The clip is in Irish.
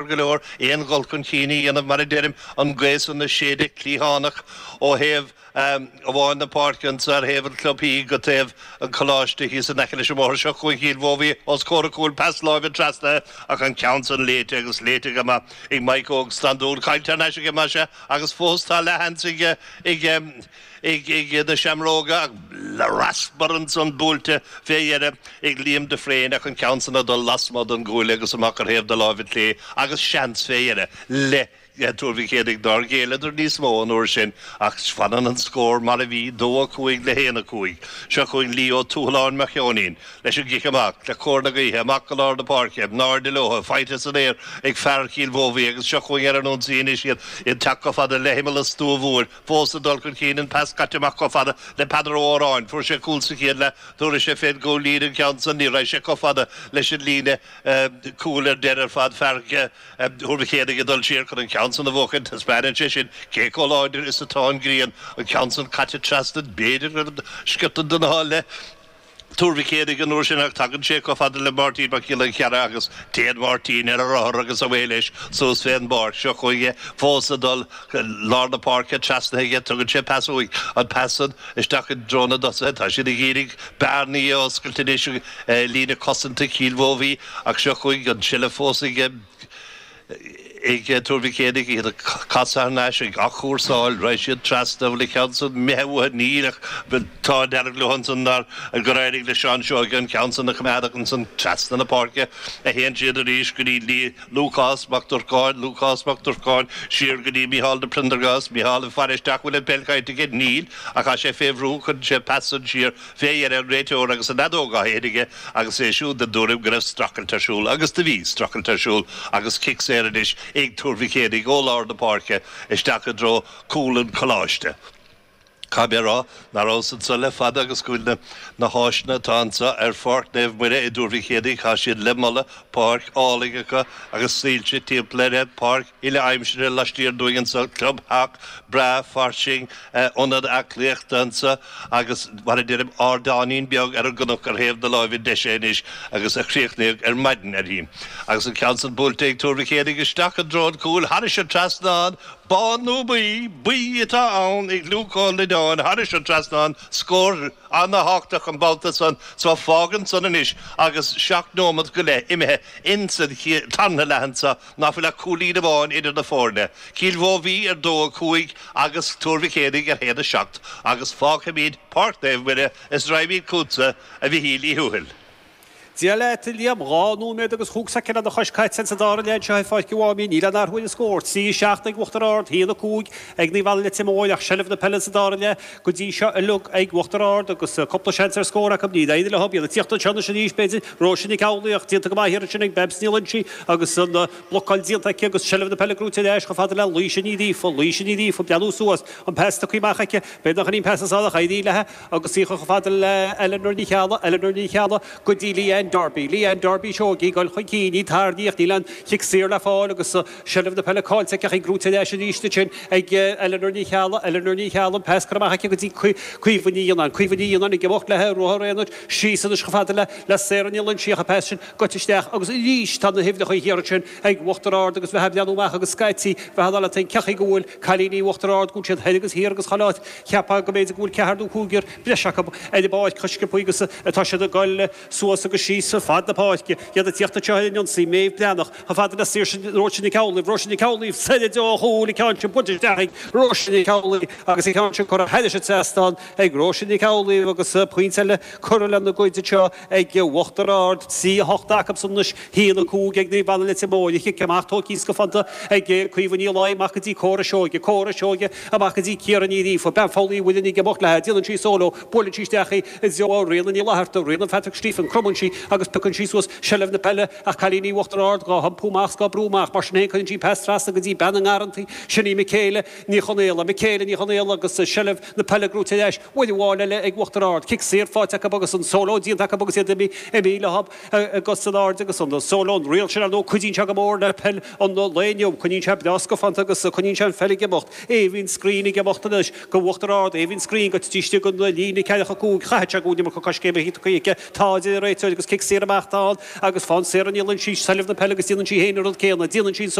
deacair go leor aon dhul chun chinn a dhéanamh mar a deirim, an ghaoth san ag séideadh cliathánach ó thaobh amháin na páirce anso ar thaobh an chlubthí go dtí taobh an choláiste thíos in aice leis an mbóthar seo chugainn Cill Mhóibhí os comhair an chúil, pas láimhe trasna ach an ceann san léite agus léite go maith ag Maidhc Óg Standún, caillte thar n-ais aige maise agus fós tá leath-sheans ag. ag na Seamróga ach raspar ansan buailte fé dheireadh ag Liam de Fréine ach an ceann san ag dul lasmuigh don gcuaille agus amach ar thaobh na láimhe clé agus seans fé deireadh le Tuar Mhic Éadaigh. Nár ghéilleadar níos mó an uair sin ach fanann an scór mar a bhí, 2-5 le 1-5. Seo chugainn Lee Ó Tuathaláin Mac Sheoinín leis an gcic amach, le cóir na gaoithe, amach go lár na páirce, in airde leotha, faighte san aer ag fear Chill Mhóibhí agus seo chugainn ar an ionsaí anois iad, iad ag teacht chomh fada le himeall an stua mhóir. fós ag dul chun cinn, an pas caite amach chomh fada le Peadar Ó Odhráin. Fuair sé cúl sa chéad leath nuair a bhí sé fé gcúl-líne an ceann san, ní raibh sé chomh fada leis an líne cúil ar deireadh ar fad, fear Thuar Mhic Éadaigh ag dul siar chun an ceann san a bhuachan. Taispeánann sé sin cé chomh láidir is atá an ghrian, an ceann san caite trasna b'fhéidir sciorta den ádh le. Tuar Mhic Éadaigh an uair sin ach tagann sé chomh fada le Máirtín Mac Giolla Chearra agus téann Máirtín ar a rothar agus away leis suas fén bpáirc. Seo chugainn é fós ag dul lár na páirce trasnaithe aige. Tugann sé pas uaidh. An pas san isteach i dtreo na dtosaithe. Tá siad ag iarraidh bearnaí a oscailt anois i líne cosanta Chill Mhóibhí ach seo chugainn an tseilbh fós ag ag Tuar Mhic Éadaigh, iad ag casadh thar n-ais, ag athchúrsáil, rachaidh siad trasna, bhfuil an ceann san imithe uathu? Níl, ach tá deireadh leo ansan nár, gur éirigh le Seán Seoige an ceann san a choimeád ach ansan trasna na páirce a théann siad arís go dtí Lúcás Mac Durcáin, Lúcás Mac Durcáin, siar go dtí Micheál de Priondargás, Micheál ag faire isteach, bhfuil an pheil caillte aige? Níl, ach tá sé fé bhrú, cuireann sé an pas san siar. Fé dheireadh an réiteoir agus an fheadóg á séideadh aige agus é siúd den tuairim go raibh strachailt ar siúl, agus do bhí strachailt ar siúl agus cic saor anois ag Tuar Mhic Éadaigh ó lár na páirce isteach i dtreo chúl an Choláiste. Caithfidh mé a rá nach rabhas anso le fada agus go bhfuil na háiseanna atá anso ar Pháirc Naomh Muire i dTuar Mhic Éadaigh, tá siad le moladh, páirc álainn acu agus soilse timpeall ar an bpáirc, uile-aimsire laistiar dínn anso, clubtheach breá fairsing, ionad aclaíochta anso agus mar a deirim, ardáinín beag ar an gcnoc ar thaobh na láimhe deise anois agus a críochnaíodh ar maidin aréir. Agus an ceann san buailte ag Tuar Mhic Éadaigh isteach i dtreo an chúil thairis an trasnán, bán nó buí, buí atá ann ag Luke Ó Loideáin thairis an trasnán, scór ana-tháchtach an babhta san so fágann san anois agus seacht nóimeat go leith imithe ins an tarna leath anso, ná fuil ach cúilín amháin idir na foirne, Cill Mhobhí ar 2, 5 agus Tuar Mhic Éadaigh ar 1, 7, agus fágfaimid Páirc Naomh Muire is raghaimid chugatsa, a Mhichíl Uí Thuathail. Dia leat, a Liam. Dhá nóiméad agus chúig soicind anois caite sa dara leath anseo i bPáirc an Mháimín. Níl aon athrú ar an scór, 3, 7 ag Uachtar Ard, 1, 5 ag Naomh Anna Leitir Móir, ach seilbh na peile sa dara leath, Go dtí seo uilig, ag Uachtar Ard agus cúpla seans ar scór acu, níl éinne le hobair ag tíocht anseo anois arís, b'fhéidir, Róise Nic Amhlaoibh, ach déanta go maith ansin ag Babs Ní Loingsigh agus an blocáil déanta aici agus seilbh na peile gnóite ar ais chomh fada le Laoise Ní Ghríofa, Laoise Ní Ghríofa ag breathnú suas, an pas tugtha amach aici, beidh nach aon pas ansan ach éiríonn léi agus í a chur chomh fada le Eleanor Ní Cheallaigh, Eleanor Ní Cheallaigh go dtí Leanne Darby, Leanne Darby seo í ag dul chun cinn, í tarraingthe ach níl aon chic saor le fáil agus. Seilbh na peile caillte aici, gnóite ar ais arís ansin ag Eleanor Ní Cheallaigh, Eleanor Ní Cheallaigh, an pas curtha amach aici go dtí Caoimhe Ní Fhionnáin, Caoimhe Ní Fhionnáin ag imeacht le ruathar aonair síos anois chomh fada le Sarah Ní Loingsigh, an pas sin goite isteach agus arís tá na huimhreacha thiar ansin ag Uachtar Ard agus bheifeá ag breathnú amach agus scaití bheifeá ag ceapadh go bhfuil cailíní Uachtar Ard, go bhfuil siad thoir agus thiar agus chuile áit, cheapfá go mb'fhéidir go bhfuil ceathrar nó cúigear breis acu ar an bpáirc chomh sciobtha agus atá siad ag goil. Suas agus síos ar fad na páirce iad ag tíocht anseo ar an ionsaí, Méabh Breathnach chomh fada le Saoirse Róise Nic Amhlaoibh, Róise Nic Amhlaoibh soir ó chúl, an ceann sin buailte isteach ag Róise Nic Amhlaoibh agus an ceann sin curtha thairis an trasnán ag Róise Nic Amhlaoibh agus pointe eile curtha lena gcuid anseo ag Uachtar Ard. 3-8 acubsan anois, 1-5 ag Naomh Anna Leitir Móir. An cic amach tógtha scafánta ag Caoimhe Ní Laighin amach go dtí Córa Seoige, Córa Seoige amach go dtí Ciara Ní Ghríofa, bean Pholl Uí Mhuirinn ag imeacht léi, déanann sí solo, buaileann sí isteach í, i dtreo Ríona Ní Fhlaithearta, Ríona Phatrick Stephen, cromann sí agus piocann sí suas seilbh na peile ach cailíní Uachtar Ard gá hiompú amach 's gá brú amach, mar sin féin cuireann sí pas trasna go dtí bean na nGarrantaí, sin í Michéala Ní Chonaola. Michéala Ní Chonaola agus seilbh na peile gnóite ar ais, uair amháin eile ag Uachtar Ard, cic saor faighte acu agus an solo déanta acu agus iad imithe leo ar cos in airde agus an solo, an riail sin ar ndóigh cuidíonn sé go mór le peil an lae inniu, coinníonn sé breá scafánta agus coinníonn sé an pheil ag imeacht. Aoibhinn Screen ag imeacht anois. d'Uachtar Ard, Aoibhinn Screen don taobh istigh den líne ceathracha cúig caithfidh sé go bhfuil an iomarca coiscéimeanna tógtha aici. Tá, a deir an réiteoir agus cic saor amach d'fhad agus fán saor a ndíolann sí seilbh na peile agus déanann sí féin an rud céanna. Déanann sí